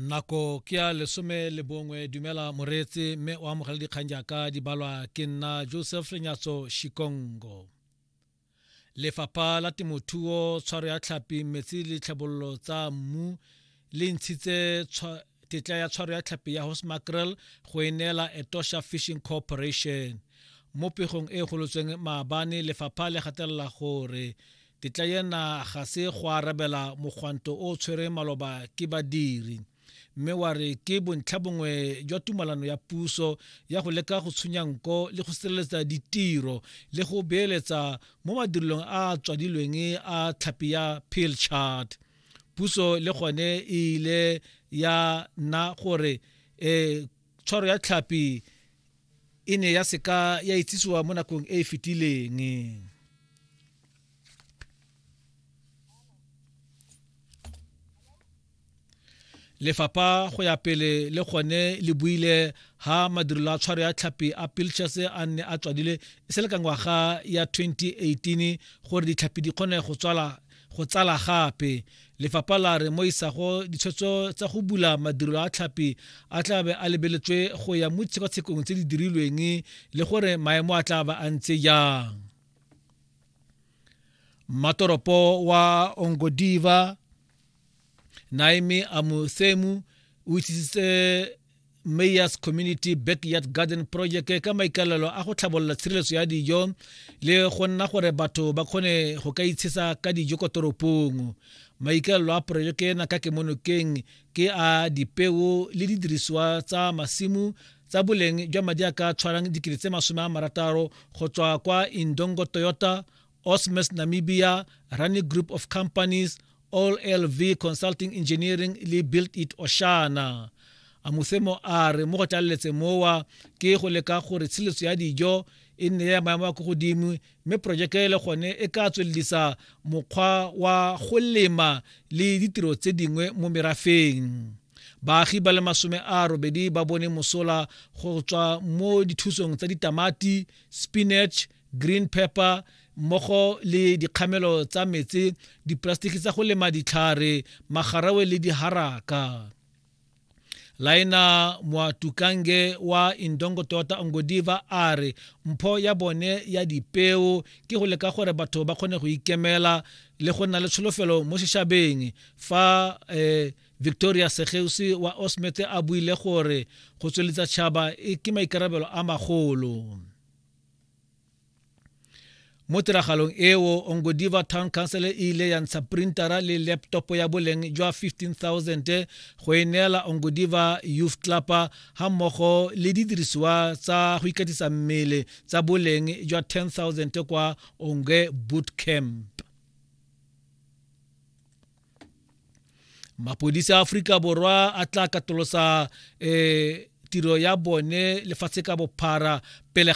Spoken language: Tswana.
nako ke ya lesome le bongwe dumela moreetsi mme o amogela dikgang jaaka di balwa ke nna joseph lenyatso shikongo lefapha la temothuo tshwaro ya tlhapi metsi le tlhabololo tsa mmu le ntshitse tetla ya tshwaro ya tlhapi ya horse mackerel go e neela etosha fishing corporation mo pegong e e golotsweng maabane lefapha le gatelela gore tetla ena ga se go arabela mogwanto o o tshwereng maloba ke badiri mme wa re ke bontlha bongwe jwa tumalano ya puso ya go leka go tshunya nko le go sireletsa ditiro le go beeletsa mo madirelong a a tswadilweng a tlhapi ya peel chart puso le gone e ile ya nna gore um tshwaro ya tlhapi e ne ya seka ya itsisiwa mo nakong e e fetileng lefapha go ya pele le gone le buile ha madirelo a tshwaro ya tlhapi a pilchers a nne a tswadile e se le ka ngwaga ya 2018 gore ditlhapi di kgone go tswala Go tsala gape, lefapha la re mo isago ditshwetso tsa go bula madirelo a tlhapi a tla be a lebeletswe go ya mo ditshekatshekong tse di dirilweng le gore maemo a tla ba a ntse jang. Mmatoropo wa Ongodiva Naimi Amusemu o itsisitse mayors community backyard garden project ka maikalelo a go tlhabolola tshireletso ya dijo le go nna gore batho ba kgone go ka itshisa ka dijo kwa toropong maikalelo a porojeke ena ka kemonokeng ke a dipeo le didirisiwa tsa masimo tsa boleng jwa madi a ka tshwarang dikete tse masome a marataro go tswa kwa indongo toyota Osmes Namibia, Rani Group of Companies, All LV Consulting Engineering le Build It Oshana. Amuthemo a re mo go tlaleletse mowa ke go leka gore tshiletso ya dijo e nne ya maemo a ko godimo mme porojeke le gone e ka tswelelisa mokgwa wa go lema le ditiro tse dingwe mo merafeng baagi ba le masome a robedi ba bone mosola go tswa mo dithusong tsa ditamati spinach green pepper mmogo le dikgamelo tsa metsi dipolasetiki tsa go lema ditlhare magarawe le diharaka laena moatukange wa indongo tota ongodiva a re mpho ya bone ya dipeo ke go leka gore batho ba kgone go ikemela le go nna le tsholofelo mo sešabeng fa eh, victoria segeusi wa osmete a buile gore go tsweletsa tšhaba e ke maikarabelo a magolo mo tiragalong eo ongodiva town council e ile ya ntsha printara le laptop ya boleng jwa 15000 go e neela ongodiva youth club ga mmogo le didirisiwa tsa go ikatisa mmele tsa boleng jwa 10000 kwa onge boot camp mapodisi a aforika borwa a tla katolosa um tiro ya bone lefatshe ka bophara pele